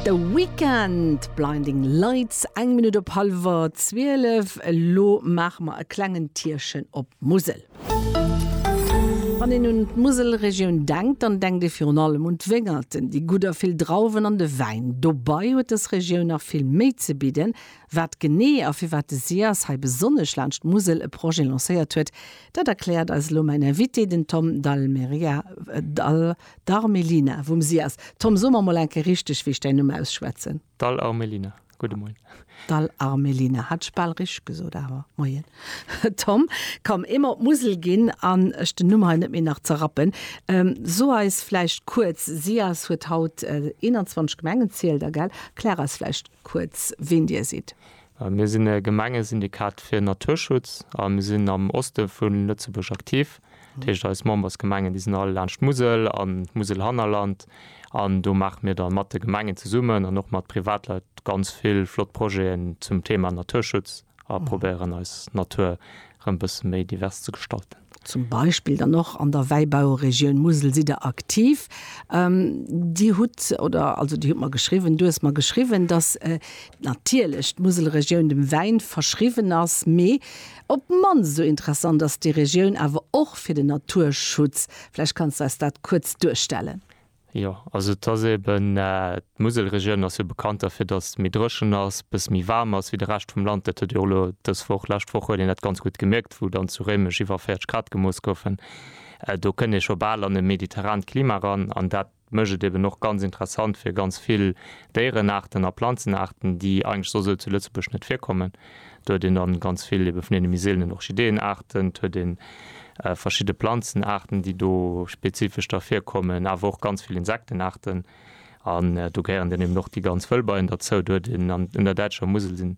The Weeknd, Blinding Lights, eng Minutt op hallwer 12. Elo maache mer e klengen Tierchen op d'Musel. Wann een un d'Muselregioun denkt, dann denkt ee virun allem un d'Wéngerten, déi gutt a vill Drauwen an de Wäin. Dobei huet dës Regioun nach vill méi ze bidden. Wat genee a firwat de SIAS hei besonnesch laanscht d'Musel e Projet lancéiert huet, dat erkläert eis elo mäin Invité, den Tom Dalmeida. D'Armelina vum SIAS. Tom, so mer mol eng Kéier richteg, wéi ech däin Numm ausschwätzen. D'Armelina, gudde Moien. D'Armelina, hat ech bal richteg gesot, awer Moien. Tom, komm, ee mer op d'Musel ginn an ech den Numm hei net méi nach zerrappen. So eis vläicht kuerz, SIAS huet haut 21 Gemengen, zielt Der, gell? Erklär eis vläicht kuerz, ween Dir sidd. Mir sinn e Gemengesyndikat fir Naturschutz a mir sinn am Oste vu Lëtzebuerg aktiv. Dat heescht eis Membersgemengen, déi sinn all laanscht d'Musel an d'Muselhannerland. An do maache mir da mat de Gemengen zesummen an och mat Privatleit ganz vill flott Projeten zum Thema Naturschutz a probéieren eis Natur erëm e bësse méi divers ze gestalten. Zum Beispill dann och an der Wäibauregioun Musel sidd Der aktiv. Dir hutt, oder also Dir hutt mer geschriwwen, du hues mer geschriwwen, datt natierlech d'Muselregioun dem Wäin verschriwwen ass, mee Op d'mannst esou interessant ass déi Regioun awer och fir den Naturschutz. Vläicht kanns de eis dat kuerz duerstellen. Jo, also et ass eben, d'Muselregioun ass jo bekannt derfir, datt et méi dréchen ass, e bësse méi waarm ass wéi de Rescht vum Land. Dat huet ee jo elo dës Woch, lescht Woch huet een dat ganz gutt gemierkt, wou dann zu Réimech iwwer 40 Grad gemooss goufen. Do kënnt ee scho bal an e mediterrant Klima eran an dat. Et mécht et eben och ganz interessant fir ganz vill Déierenaarten a Planzenaarten, déi eigentlech soss sou zu Lëtzebuerg net virkommen. Do huet een da ganz vill ebe vun deene méi seelenen Orchideeënaarten, et huet ee verschidde Planzenaarten, déi do spezifesch da virkommen, awer och ganz vill Insektenaarten. An do gehéieren dann eben och déi ganz Wëllbeien derzou. Do huet een an der däitscher Musel sinn,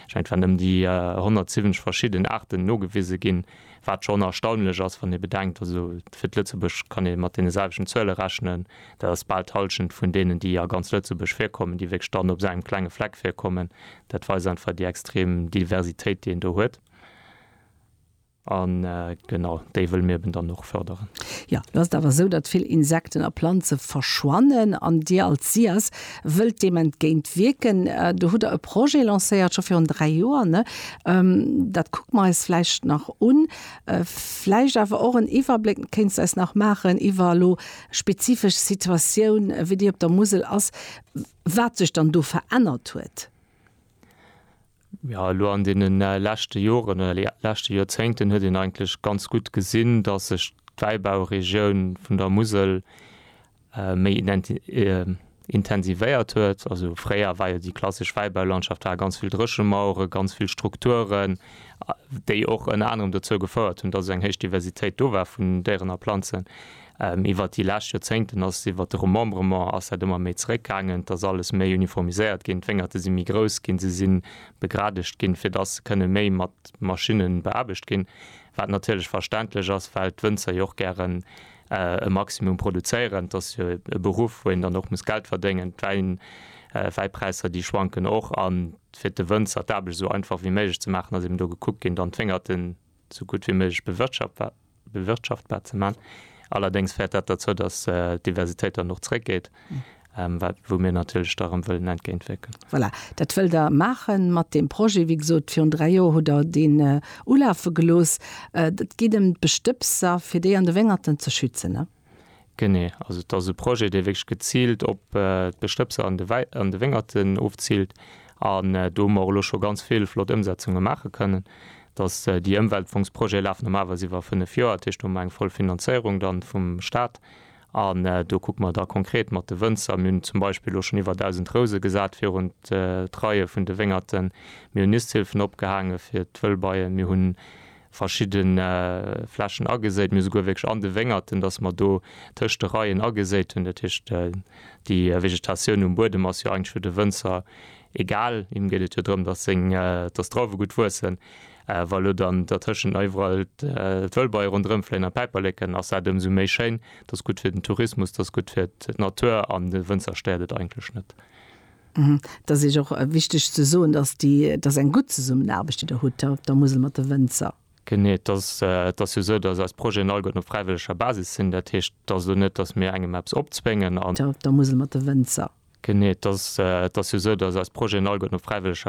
ech mengen et waren ëm déi 170 verschidden Aarten nogewise ginn. Wat schonn erstaunlech ass, wann ee bedenkt, also fir d'Lëtzebuerg kann ee mat deene selwechten Zuele rechnen, dat ass bal d'Hallschent vun deenen, déi a ganz Lëtzebuerg virkommen, déi wierklech dann op engem klenge Fleck virkommen. Dat weist einfach déi extrem Diversitéit, déi een do huet. A genau déi wëlle mir eben dann och fërderen. Jo, lo ass et awer esou, datt vill Insekten a Planze verschwannen an Dir als SIAS, wëllt deem entgéint wierken. Do hutt Der e Projet lancéiert, scho virun dräi Joer, ne? Dat kucke mer eis vläicht nach un. Vläicht awer och en Iwwerbléck, kéints de eis nach maachen, iwwer elo spezifesch Situatioun, wéi déi op der Musel ass, wat sech dann do verännert huet? Jo, elo an deene leschte Joren oder leschte Joerzéngten huet een eigentlech ganz gutt gesinn, datt sech d'Wäibauregioun vun der Musel méi intensivéiert huet. Also fréier war jo déi klassesch Wäibaulandschaft war ganz vill Dréchemauere, ganz vill Strukturen, déi och ënner anerem dozou gefouert hunn, datt eng héich Diversitéit do war vun Déieren a Planzen. Iwwer déi lescht Joerzéngten ass iwwer de Remembrement ass dat ëmmer méi zeréckgaangen. Et ass alles méi uniformiséiert ginn. D'Wéngerte si méi grouss ginn. Se si begradegt ginn, fir dass se kënne méi mat Maschinne beaarbecht ginn. Wat natierlech verständlech ass, well d'Wënzer jo och gären e Maximum produzéieren. Et ass jo e Beruff, wou een dann och muss Geld verdéngen. D'Wäipräisser, déi schwanken och. A fir de Wënzer d'Aarbecht esou einfach wéi méiglech ze maachen, ass eben do gekuckt ginn, dann d'Wéngerten esou gutt wéi méiglech bewirtschaftbar ze maachen. Allerdéngs féiert dat derzou, datt d'Diversitéit dann och zréckgeet, wat wou mir natierlech da erëm wëllen entgéintwierken. Voilà, dat wëllt Der maache mat deem Projet. Wéi gesot, virun dräi Joer hutt Der deen ulafe gelooss. Et geet ëm d'Bestëbser, fir déi an de Wéngerten ze schützen, ne? Genee, also et ass e Projet, dee wierklech geziilt op d'Bestëbser an de Wéngerten ofziilt an do hu mer och elo scho ganz vill flott Ëmsetzunge maache kënnen. Dass déi Ëmweltfongs-Projete lafen normalerweis iwwer fënnef Joer, dat heescht do hu mer eng voll Finanzéierung dann vum Staat an do kucke mer da konkret mat de Wënzer. Mir hunn zum Beispill elo schonn iwwer 1.000 Rouse gesat virun d'Reie vun de Wéngerten, mir hunn Nisthilfen opgehaange fir d'Wëllbeien, mir hunn verschidden Flächen ageséit, mee esouguer wierklech an de Wéngerten, dass mer do tëscht de Reien ageséit hunn. Dat heescht, déi Vegetatioun um Buedem ass jo eigentlech fir de Wënzer egal. Him geet et jo drëm, dass seng, dass d'Drauwe gutt wuessen. Wa elo dann dertëschent nach iwwerall d'Wëllbeie ronderëm fléien an d'Päiperleken, ass dat ëmsou méi schéin. Dat ass gutt fir den Tourismus, dat ass gutt fir d'Natur an de Wënzer stéiert et eigentlech net. Et ass Iech och wichteg ze soen, dass déi, et ass eng gutt Zesummenaarbecht, déi Der hutt hei op der Musel mat de Wënzer. Genee, et ass, et ass jo esou, dass eis Projeten all goten op fräiwëlleger Basis sinn. Dat heescht, et ass elo net, dass mir engem eppes opzwéngen an. Op der Musel mat de Wënzer. Genee, et ass, et ass jo esou, dass eis Projeten all goten op fräiwëlleger.